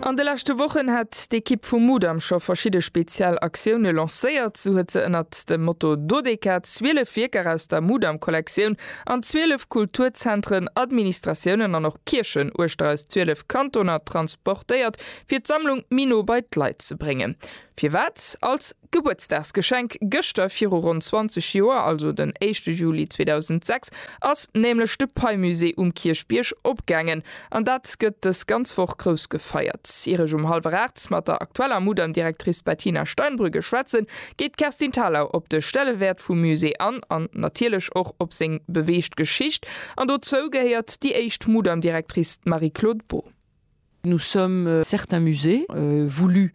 An de leschte Wochen hat d'Ekipp vum Mudam scho verschidde speziell Aktioune lancéiert. Sou huet se ënnert dem Motto Dodeka 12 Wierker aus der Mudam-Kollektioun an 12 Kulturzentren, Administratiounen an och Kierchen uechter eis 12 Kantoner transportéiert, fir d'Sammlung méi no bei d'Leit ze bréngen. Firwat? Als. Gebuertsdagsgeschenk, Gëschter viru ronn 20 Joer, also den éischte Juli 2006, ass nämlech de Pei-Musée um Kierchbierg opgaangen. An dat gëtt dës ganz Woch grouss gefeiert. Ier ech um hallwer 8 mat der aktueller Mudam-Direktrice Bettina Steinbrügge schwätzen, geet d'Kerstin Thalau op de Stellewäert vum Musée an an natierlech och op seng beweegt Geschicht. An dozou gehéiert déi éischt Mudam-Direktrice, d'Marie-Claude Beaud. Nous sommes certains musées, voulus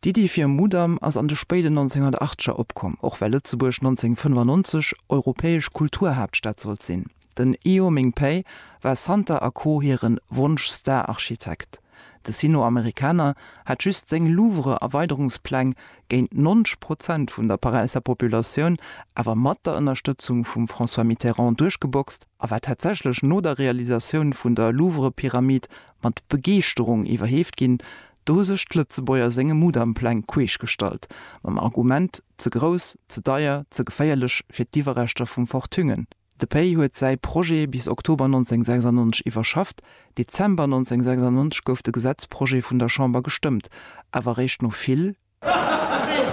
D'Iddi fir e Mudam ass an de spéiden 1980er opkomm, och well Lëtzebuerg 1995 europäesch Kulturhaaptstad sollt sinn. Den Io Ming Pei war Santa a Co. Hire Wonsch-Star-Architekt. De Sino-Amerikaner hat just seng Louvre-Erweiderungspläng géint 90 Prozent vun der Paräisser Populatioun, awer mat der Ënnerstëtzung vum François Mitterrand, duerchgeboxt a war tatsächlech no der Realisatioun vun der Louvre-Pyramid mat Begeeschterung iwwerheeft ginn, Do hu sech d'Lëtzebuerger senge Mudampläng queesch gestallt, mam Argument, ze grouss, ze deier, ze geféierlech fir d'Iwwerreschter vum Fort Thüngen. De Pei huet säi Projet bis Oktober 1996 iwwerschafft, Dezember 1996 gouf de Gesetzprojet vun der Chamber gestëmmt, awer eréischt no vill, vill,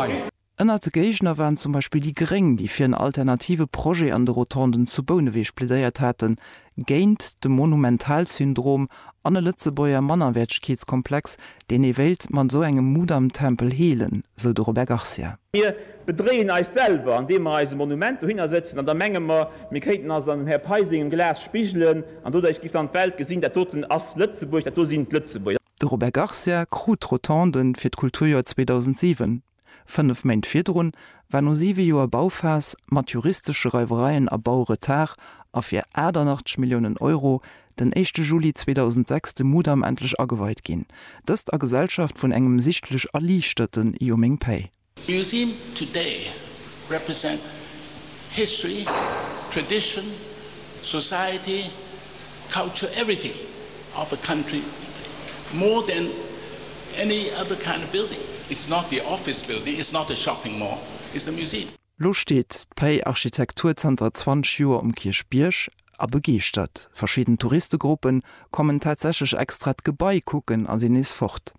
vill. Ënnert de Géigner waren zum Beispill déi Gréng, déi fir en alternative Projet an de Rotonden zu Bouneweg plädéiert haten, géint de Monumentalsyndrom an e Lëtzebuerger Mannerwäertegkeetskomplex, deen ee wéilt mat esou engem Mudamtempel heelen, sou de Robert Garcia. Mir bedréien eis selwer, andeem mer eis e Monument dohinner sëtzen an da menge mer, mir kéinten eis an dem Här Pei sengem Glas spigelen an doduerch géif dann d'Welt gesinn, dat doten ass Lëtzebuerg, dat do sinn d'Lëtzebuerger. De Robert Garcia krut d'Rotonden fir d'Kulturjoer 2007. Fënnef Méint virdrun war no siwe Joer Bauphas, mat juristesche Reiwereien a Bauretard a fir 88 Milliounen Euro den éischte Juli 2006 de Mudam endlech ageweit ginn. Dëst a Gesellschaft vun engem sichtlech erliichterten Yumingpei. Museum today represent history, tradition, society. Culture everything of a country more than any other kind of building. It's not the office building, it's not a shopping mall, it's a museum. Lo steet d'Pei Architektur zanter 20 Joer um Kierchbierg a begeeschtert. Verschidden Touristegruppe kommen tatsächlech extra d'Gebai kucken a sinn nees fort.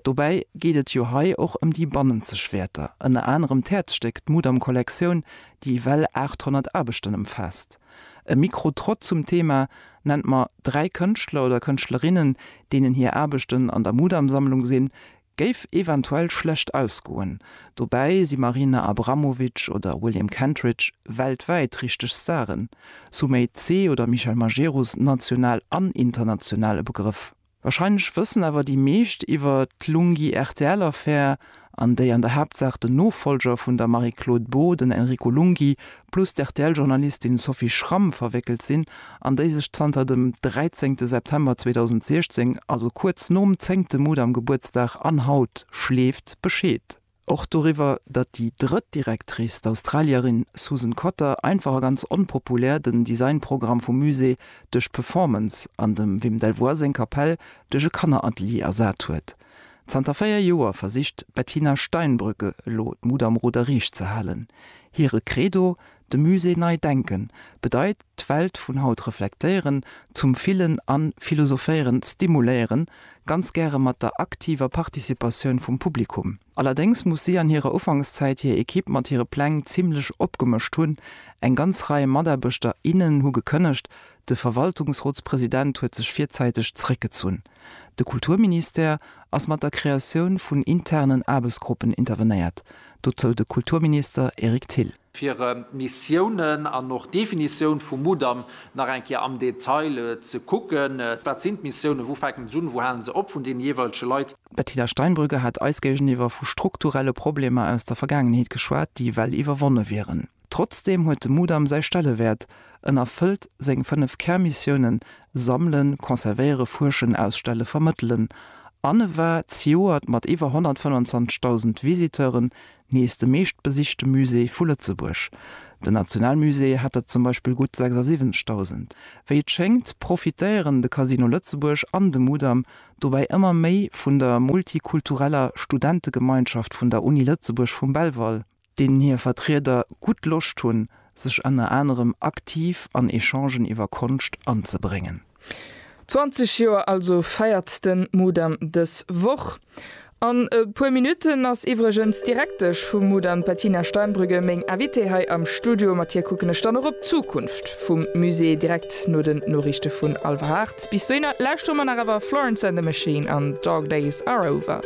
Dobäi geet et jo hei och ëm déi bannenzeg Wäerter, ënner anerem d'Häerzstéck, d'Mudam-Kollektioun, déi ewell 800 Aarbechten ëmfaasst. E Mikro-Trott zum Thema Nennt mer dräi Kënschtler oder Kënschtlerinnen, deenen hir Aarbechten an der Mudam-Sammlung sinn, géif eventuell schlecht ausgoen. Dobäi si Marina Abramovic oder William Kentridge weltwäit richteg Staren, Sumay Tse oder Michel Majerus national an international e Begrëff. Wahrscheinlech wëssen awer déi meescht iwwer d'Lunghi-RTL-Affär, an déi an der Haaptsaach den Nofollger vun der Marie-Claude Beaud, den Enrico Lunghi, plus d'RTL-Journalistin Sophie Schramm verwéckelt sinn, an déi sech zanter dem dräizéngte September 2016, also kuerz nom zéngte Mudam-Gebuertsdag an haut, schleeft Bescheed. Och doriwwer, datt déi drëtt Directrice, d'Australierin Susan Cotter, einfach a ganz onpopulär den Designprogramm vum Musée duerch d'Performance an dem Wim Delvoye seng Kapell duerch e Kanneratelier ersat huet. Zanter véier Joer versicht d'Bettina Steinbrück elo d'Mut am Ruder riicht ze halen. Hire Credo, De Musée nei denken bedeit d'Welt vun haut reflektéieren, zum Fillen an Philosophéieren stimuléieren, ganz gäre mat der aktiver Participatioun vum Publikum. Allerdéngs muss si an hirer Ufankszäit hir Ekipp mat hire Pläng zimlech opgemëscht hunn. Eng ganz Rei Mataarbechter, innen hu gekënnegt, de Verwaltungsrotspresident huet sech virzäiteg zeréckgezunn. De Kulturministère ass mat der Kreatioun vun internen Aarbechtsgruppen intervenéiert, dozou de Kulturminister Eric Thill. fir Missiounen an och Definitioun vum Mudam nach eng Kéier am Detail ze kucken, wat sinn d'Missiounen, wou fänken se un, wou halen se op, vun deene jeeweilege Leit. D'Bettina Steinbrügge hat eis géigeniwwer vu strukturelle Problemer aus der Vergaangenheet geschwat, déi well iwwerwonne wieren. Trotzdeem huet de Mudam säi Stellewäert, en erfëllt seng fënnef Kärmissiounen, Sammelen, Conservéiere, Fuerschen, Ausstelle, Vermëttelen, an e war zejoert mat iwwer 125.000 Visiteuren Nees de meeschtbesichte Musée vu Lëtzebuerg. Den Nationalmusée hat der zum Beispill gutt 76.000. Wéi et schéngt, profitéieren de Casino Lëtzebuerg an de Mudam dobäi ëmmer méi vun der multikultureller Studentegemeinschaft vun der Uni Lëtzebuerg vum Belval, deenen hir Vertrieder gutt Loscht hunn, sech ënner anerem aktiv an Echangen iwwer Konscht anzebréngen. 20 Joer also feiert den Mudam dës Woch. An e puer Minutten ass iwwregens d'Direktesch vum Mudam, Bettina Steinbrügge, meng Invitée hei am Studio. Mat hir kucken ech dann och op d'Zukunft vum Musée direkt no den Noriichte vun Alver Haart. Bis dohinner lauschtere mer nach awer Florence and the Machine an Dog Days Are Over.